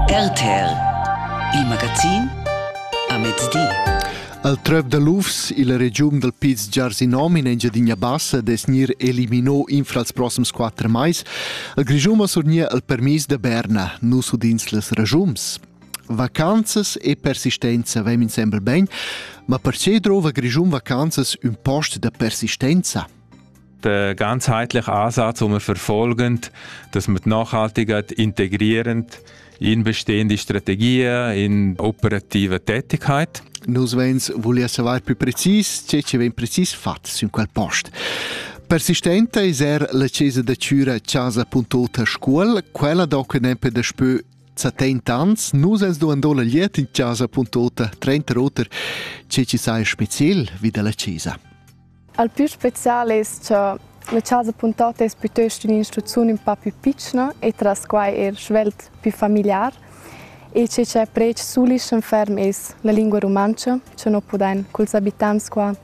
RTL, il magazin a mezdi. Al tröv da lufs illa regiun dal Piz Giarsinom in Engiadina Bassa des gnir elimino infra els prossims quatter mais. Il Grischun ha surgnir il permis da Berna, nus udins les ragiums. Vacanzas e persistenza vem insembel ben, ma perche drova Grischun vacanzas ün post da persistenza? der ganzheitlich Ansatz, um verfolgend, dass man nachhaltig integrierend in bestehende Strategien, in operative Tätigkeit. Nus vens volia savoir più precis ce che ven precis fatts in quel post. Persistente is er la cesa da Cura casa.ota scuol, quella do che nempe da spö 70 ans, nus ens do andò la liet in casa.ota 30 oter, ce ci sai spezial vi dalla cesa. Al plü special es cha la chasa Puntota es pütöst ün'instrucziun ün pa pü pitschna e tras quai eir svelt pü famigliar e che cha predsch sulischem ferm es la lingua rumantscha cha no pudain culs abitants qua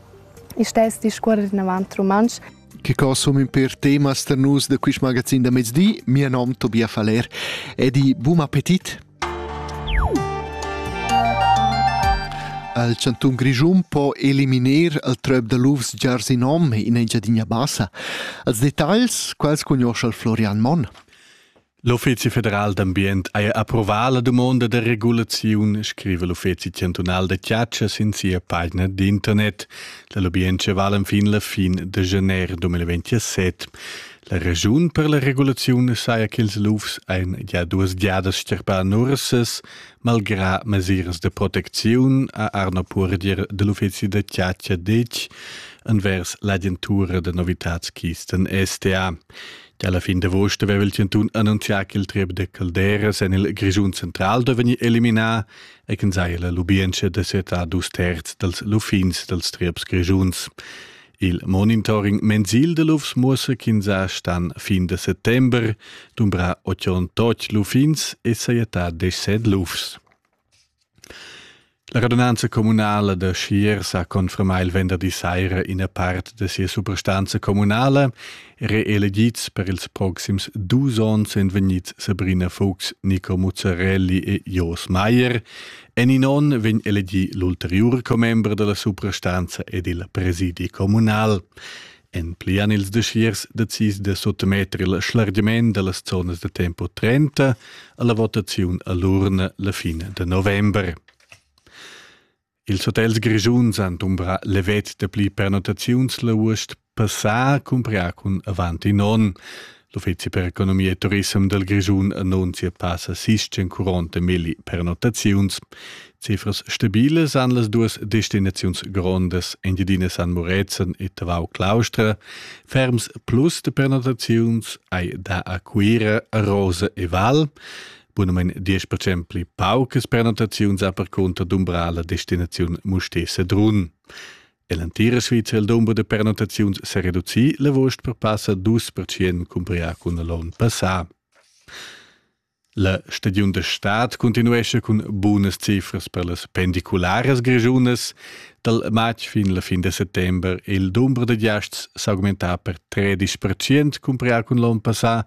istess discuorrer inavant rumantsch. Che co sun ün pêr temas per nus da quist magazin da mezdi. Mia nom Tobia Faller e di bun appetit. Il chantun Grischun po eliminar il tröp da lufs giar sin om in Engiadina Bassa. Als detagls quals cugnoscha il Florian Monn. L'Uffizi federal d'ambient ha approvà la dumonda da regulaziun, scrive l'Uffizi chantunal da chiaccia sin sia pagina d'internet. La lubientscha vala enfin la fin de gennaire 2027. La raschun per la regulaziun saja ch'ils lufs ein gia duas giadas sterpà nursas, malgrà mesiras de protecziun, ha Arno Purdier de l'uffizi da chatscha detg envers l'agentura da novitatsquisten STA. Gia alla fin d'agost aveva il Cantun annunzià che il triep de calderas en il Grischun central deve vegnir eliminà e che saja la lubientscha de setar dus terz dels luffins dels trieps grischuns. Il monitoring mensil de lufs muossa ch'ins stan fin de settember dumbra 88 luffins e saietà 17 lufs. La radunanza comunala de Schiers ha confermà il venderdi saira ina part de sia suprastanza comunala, reelegits per ils proxims dus onns en vegnids Sabrina Fuchs, Nico Muzzarelli e Jos Meier En in onn vegn elegì l'ulteriur commember da la suprastanza ed il presidi communal. En pli han ils desirs decis da suttemetter il schlargiment da las zonas da tempo 30 alla votaziun a l'urna la fine de november. Ils hotels grischuns han dumbrà levet de pli pernotaziuns la uost Per far cumprar cun avant in onn. L'Uffizi per economia e turism del Grischun annunzia passa sischen curonte milli pernotaziuns. Cifras stabiles han las duas destinaziuns grondas Engiadina San Murezzan e Tavau Claustra. Ferms plus de pernotaziuns hai da a Cuira, Rosa e Val. Bunamein 10% pli paucas pernotaziuns a per conta d'umbrala destinaziun Mustesa Drun. E l'entira Svizra il dumber da pernottaziuns s'è reducì l'avuost per passa dus percent cumparià cun l'onn passà. La stagiun da stad continuescha cun bunas cifras per las pendicularas grigiunas. Dal matg fin la fin da settembre il dumber da giasts s'augmentà per 13% cumparià cun l'onn passà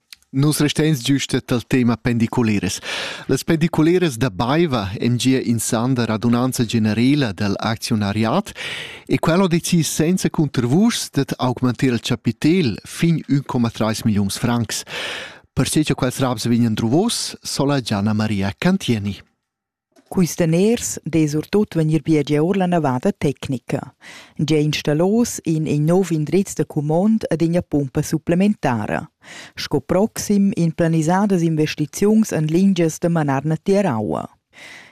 Nus resteins giusta tal tema pendiculeras. Las pendiculeras da Baiva èn gia in san da radunanza generela dal acziunariat e quel ha decis senza cuntervuschs dad augmentar il chapitel fin 1,3 milliuns francs. Perche che quels raps vegnan druvos, sola Gianna Maria Cantieni. Quist daners dess surtut vegnir biegià our la navada tecnica. Gia installos in in nouv indriz da cumond ed üna pumpa supplementara. Sco proxim in planisadas investiziuns en lingias da manar na tier aua.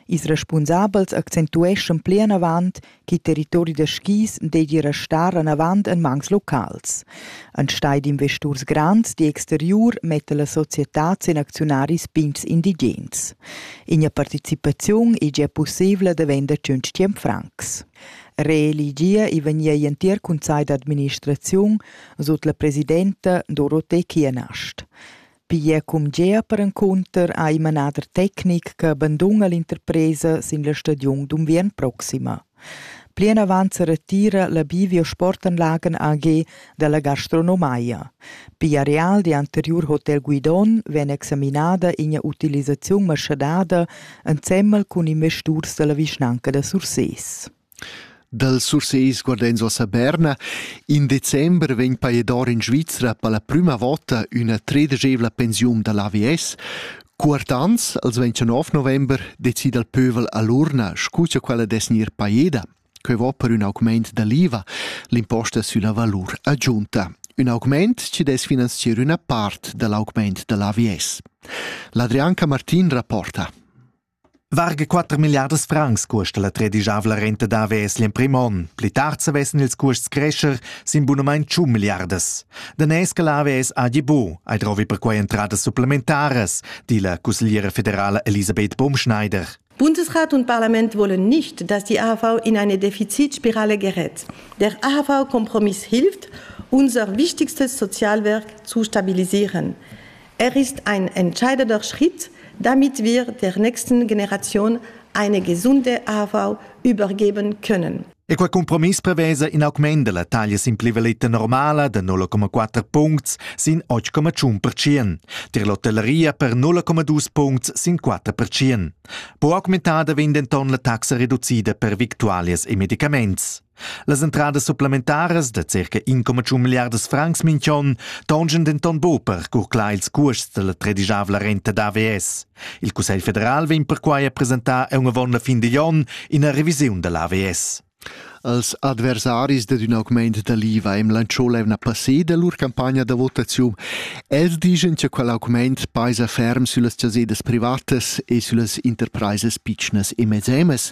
Ils respunsabels accentueschan plinavant ch'il territori da skis deigi restar anavant en mans locals. Enstagl d'investurs grands d'exteriur metta la societad sin acziunaris pigns indigens. Ina participaziun ei gia pussebla da vender tschintg francs. Reeligia ei vegnia igl entir cunsegl d'administraziun sut la presidenta Dorothee Kienast. Pia cumgea perencunter ha il manader tecnic che banduna l'interpresa sin la stagiun d'unviern proxima. Plinavant sa retira la Bivio Sportanlagen AG dalla gastronomaia. Pia real di anteriur hotel Guidon vegn examinada ina utilisaziun maschadada ensemmel cun investiturs dalla vischnanca da Sursés. Dal Surseis guard'ins uossa Berna. In december vegn pajador in Svizra per la prüma vota üna tredegievla pensiun da l'AVS. Cuort ans, als 29 november, decida il pövel a l'urna, scu cha quella dess gnir pajeda. Quai vo per ün augmaint da l'IVA, l'imposta sülla valur agiunta. Ün augmaint chi dess finanzier üna part da l'augmaint da l'AVS. L'Adrianca Martin rapporta. Varga 4 milliardas francs custa la tredigiavla renta d'AVS l'emprim onn. Pli tard savessen ils custs crescer sin bunamain 100 milliardas. Danès che l'AVS ha gibu, hai drovi perquai entradas supplementaras, di la cussegliera federala Elisabeth Baumschneider. Bundesrat und Parlament wollen nicht, dass die AHV in eine Defizitspirale gerät. Der AHV-Kompromiss hilft, unser wichtigstes Sozialwerk zu stabilisieren. Er ist ein entscheidender Schritt, damit wir der nächsten Generation eine gesunde AV übergeben können. E quei compromiss prevesa in augment della taglia sin plivaletta normala da 0,4 puncts sin 8,1%, tier l'hotelleria per 0,2 puncts sin 4%. Po augmentada vegn denton la taxa reducida per victualias e medicaments. Las entradas supplementaras da circa 1,1 milliardas francs minch'on tongien denton buc per curclar ils cuosts dalla tredischavla renta d'AVS. Il Cussegl federal vegn perquai a presentar aunc avon la fin digl onn ina revisiun dall'AVS. Als adversaris dad ün augmaint da l'IVA im lancio l'eivna passeda lur campagna da votaziun. Els digen cha quel augmaint paisa ferm süllas chasedas privatas e süllas interpraisas pitschnas e mezzemas.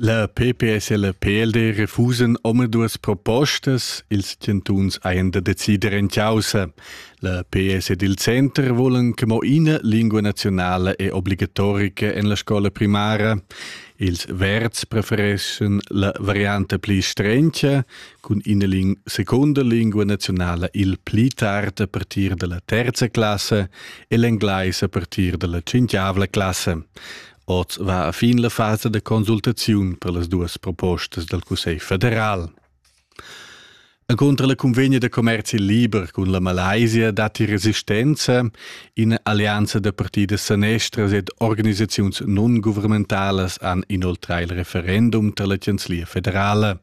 La PPS e la PLD refusan omaduas propostas, ils chantuns hajan da decider en caussa. La PS ed il Center volan che mo ina lingua nazionala è obligatorica en la scola primara. Ils Verds prefereschen la variante pli strencha, cun ina ling seconda lingua nazionala il pli tard a partir dalla terza classa e l'englais a partir dalla cinquiavla classa. Oz va a fin la fasa da consultaziun per las duas propostas dal Cussegl federal. E contra la convegna da commerzi liber cun la Malaysia datti resistenza, ina alleanza da partidas sanestras ed organisaziuns non-guvernementalas han inoltrà il referendum tar la chanzlia federala.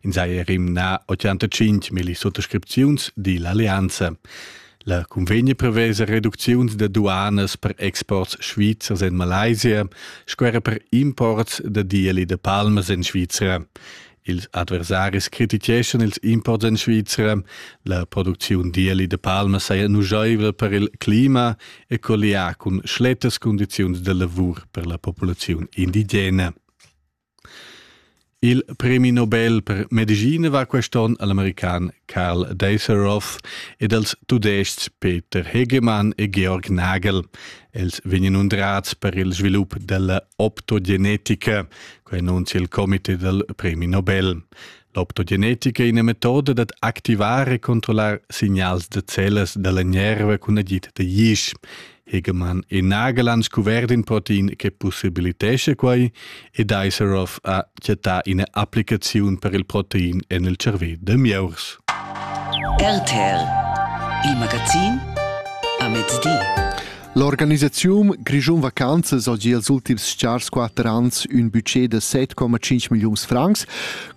In saja rimnà 85 milli suttascripziuns di l'alleanza. La cunvegna prevesa reducziuns da duanas per exports svizzers en Malaysia sco era per imports da dieli da palmas en Svizra. Ils adversaris crititgeschan ils imports en Svizra. La producziun d'ieli da palma saja nuschaivel per il clima e collià cun schlettas cundiziuns da lavur per la populaziun indigena. Il premi Nobel per medischina va quest onn al american Karl Deserov ed als tudestgs Peter Hegemann e Georg Nagel. Els vegnan undrats per il svilup della optogenetica, quai annunzia il comité dal premi Nobel. L'optogenetica è ina metoda dad activar e controllar signals da cellas da la nerva cun agid da isch. Hegemann è nagel han scuvert in protein che possibilitesce quai ed Iserov ha chattà ina applicaziun per il protein en il cervè da mieurs. RTL, il magazin a mezdi. L'organisaziun Grischun Vacanzas ha gia els ultims stgars quatter ans ün budget da 7,5 milliuns francs.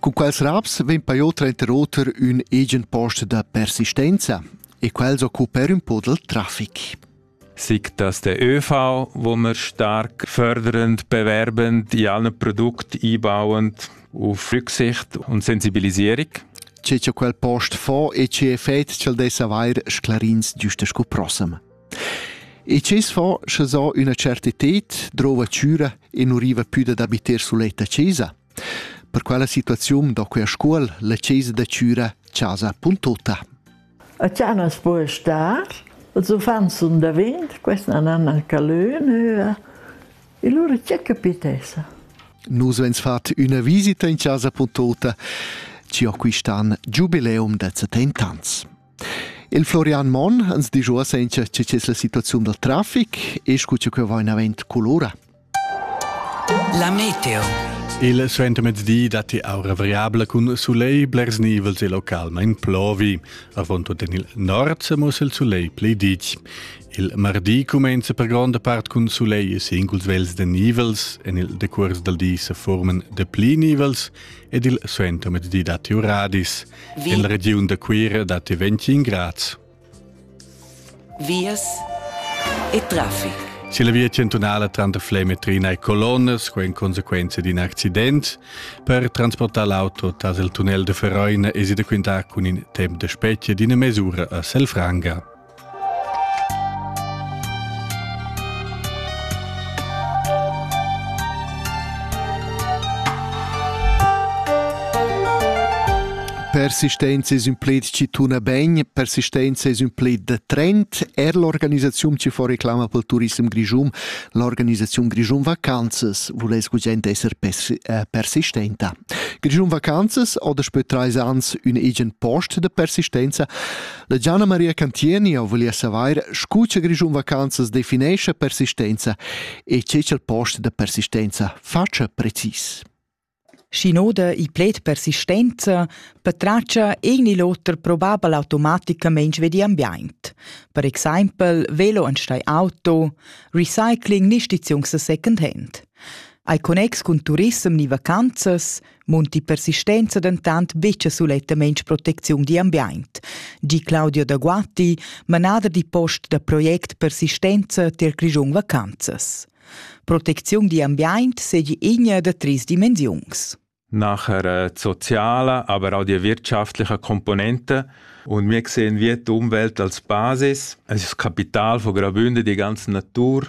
Cun quels raps vegn paiò trenter oter ün egen post da persistenza e quels occuper ün po del traffic. Sic dass der ÖV, wo wir stark fördernd, bewerbend in allen Produkt einbauend auf Rücksicht und Sensibilisierung. Ce che quel post fa e ce effet ch'el dess avair sclarins giusta scu prossem. E chi's fa, sche s'ho üna certited, drouva chüra e nu riva pü dad abiter suletta chesa. Per quella situaziun do quia scuol la chesa da chüra Chasa.ot. A Chanas po star, els uffants sun davent, questa nan a Calön höa, e lura c'è capitessa. Nus vens fat üna visita in Chasa.ot, ci ho quist'an giubileum da 70 ans. Il Florian Monn ans disch uossa incha che es la situaziun dal trafic e scu cha que vain avent culura. La meteo. Il suentermezdi datti aura variabla cun sulegl blers nivels e localmain plovi. Avon tut en il nord mo il sulegl pli ditg. Il mardi cumenza per gronda part cun sulegl e singuls vels de nivels. En il decurs dal di se formen de pli nivels ed il suentermezdi datti uradis. En regiun da Cuira dat ti 25 grads. Vias e traffic. Se la via centunala tranter Flemetrina e Colonnas quo in conseguenza di un accident, per transportar l'auto tras il tunnel de Feroina es i da quintar cun in temp de specie d'ina mesura a Selfranga. Persistenza es ün pled chi tuna ben, persistenza es ün pled da trend. Er l'organisaziun chi fa reclama pel turissem grischun, l'organisaziun Grischun Vacanzas, vuless gugent esser äh, persistenta. Grischun Vacanzas ha daspö trais ans ün egen post da persistenza. La Gianna Maria Cantieni ho voglia savair scu cha Grischun Vacanzas definescha persistenza e che cha'l post da persistenza fatscha precis. Schi noda il pled persistenza patratscha egn il oter probabel automaticamaintg vedi ambiaint. Per exaimpel velo an stei auto, recycling ni stiziungs a second hand. Ai connex cun turissem ni vacanzas, munti persistenza dentant betg sulettamain protecziun d'ambient. Gi Claudio da Guatti, manader di post da project Persistenza tier Grischun Vacanzas. Protecziun d'ambient segi igna da tris dimensiuns. Nachher äh, die soziale, aber auch die wirtschaftliche Komponente. Und wir sehen wir die Umwelt als Basis. Es ist das Kapital von Grabünde, die ganze Natur.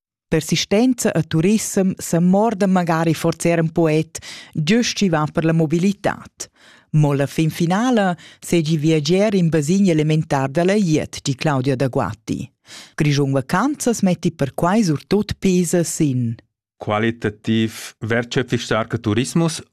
Persistenza e turissem sa morda magari forse er un poet, giust chi va per la mobilitad. Mo la fin finala segi viager in basin elementar dalla iet, di Claudia da Guatti. Grischun Vacanzas metti perquai surtut pesa sin. Qualitativ wertschöpfig starker Tourismus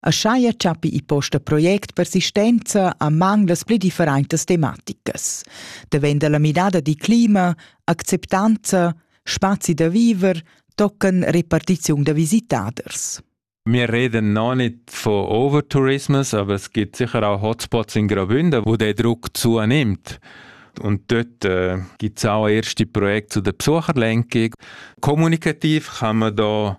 Aschia chappi i posta project persistenza a mang las pli differentas tematicas. Davenda la midada di clima, acceptanza, spazi da viver, tocken repartiziun da visitaders. Wir reden noch nicht von Overtourismus, aber es gibt sicher auch Hotspots in Graubünden, wo der Druck zunimmt. Und dort äh, gibt es auch erste Projekte zu der Besucherlenkung. Kommunikativ kann man da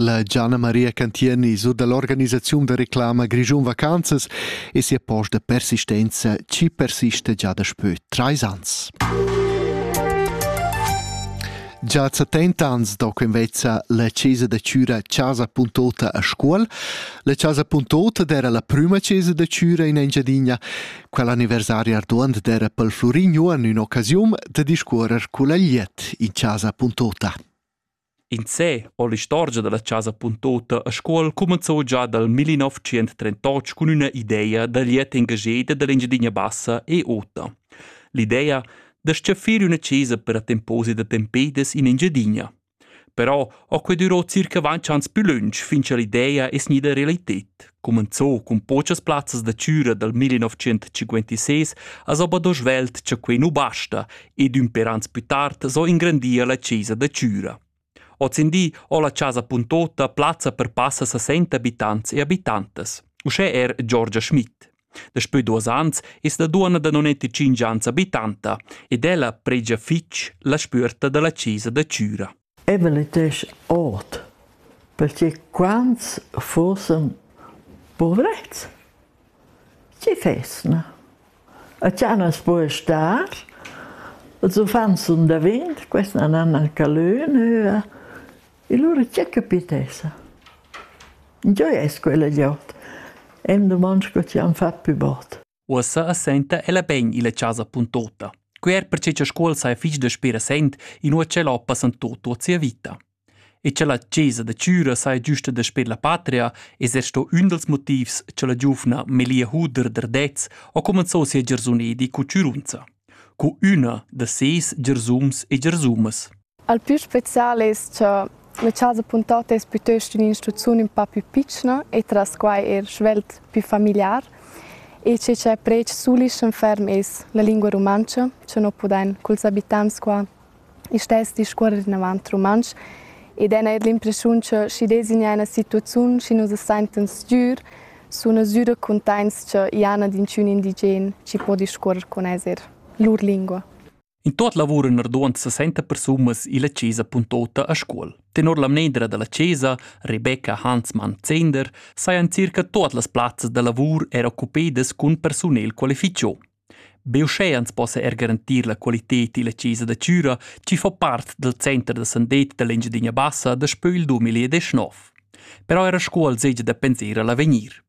La Gianna Maria Cantieni surdà l'organisaziun da reclama Grischun Vacanzas e sia post da persistenza chi persista già daspö trais ans. Già a 70 ans do invezza la chesa da Chüra Chasa Puntota a Scuol. La Chasa Puntota era la prima chesa da Chüra in Engiadina. Quell'anniversario arduant era pel Flurignuan un'occasiun da discuorrer cul agliet in Chasa Puntota. In sé o l'istorgia da la chasa Puntota a Scuol cumenzò già dal 1938 cun üna ideia da liet engageda da l'Engiadina Bassa e ota. L'idea da s-chaffir üna chesa per a temposi da tempedes in Engiadina. Però ho que durò circa vantg ans plü lönch fin cha l'idea es gnida realited. cumenzò cun pochas plazzas da chüra dal 1956 as obado svelt cha quei nu basta ed ün per ans plü tard so ingrandir la chesa da chüra. Ozindi ho la chasa puntota plazza per passa 60 abitants e abitantas, uschè er Giorgia Schmidt. Daspö duos ans es la duonna da 95 ans abitanta ed ella pregia fich la spüerta da la chesa da chüra. Evelyn dess ord, pertgei quants fussen puvrets? Tgi fess, na? A tganas po e star, els uffants sun da vint, quest nan han al calö nöa, e lura tgè capit esa? Giò es quella gliout. E'm dumond sco ti han fat pü bod. Uossa as senta ella ben illa chasa puntota. Quer perche cha Scuol saja fich daspö recent, inua cha ella ho passanto tuot sia vita. E cha la chesa da Chüra saja giusta daspö la patria es er sto ün dals motivs cha la giuvna Melia Huder d'Ardez ho comenzò sia giarsunedi cu Chürunza, cu üna da ses giarsums e giarsumas. Al plü spezial es cha la chasa Puntot es pütöst ün'instrucziun ün pa pü pitschna e tras quai eir svelt pü famigliar e che cha predsch sulischem ferm es la lingua rumantscha, cha no pudain culs abitants qua istess discuorrer inavant rumantsch ed hain eir l'impreschiun cha schi designar üna situaziun schi nus as saintan sgür suna sü da cuntaints cha i hana d'inchün indigen chi po discuorrer cun els eir lur lingua. In tot lavur en arduond 60 persunas illa chesa Puntota a Scuol. Tenor la mnedra da la chesa, Rebecca Hansmann Zender, sajan circa tot las plazzas da lavur er occupedas cun persunel qualificio. Be uschè ans possa er garantir la qualitet illa chesa da Chüra, chi fa part dal center da sandet da l'Engiadina Bassa daspö il 2019. Però era Scuol segia da pensar a l'avegnir.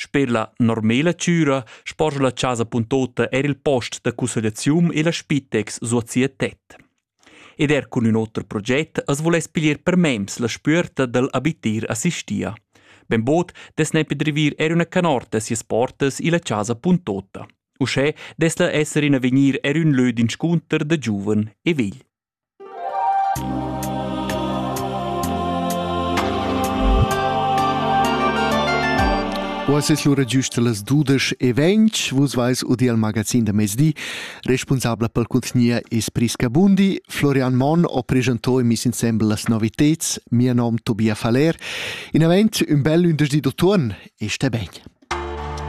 Sper la normela chüra sporgia la chasa Puntota eir il post da cussegliazium e la Spitex suot sia tet. Ed er cun ün oter proget as voless piglier per mems la spüerta dal abitir assistia. Benbod dess nepi drivir er üna canorta sias portas illa chasa Puntota. Uschè dess la esser in avegnir er ün lö d'inscunter da giuven e vegl. Uoss es lura giüst las dudesch e ventg. Vus vais udi al magazin da mezdi. Responsabla pel cuntgnier es Prisca Bundi. Florian Monn ho presentò e miss insembel las noviteds. Mia nom Tobia Faller. In avent ün bel ündersdi d'utuon e sté ben!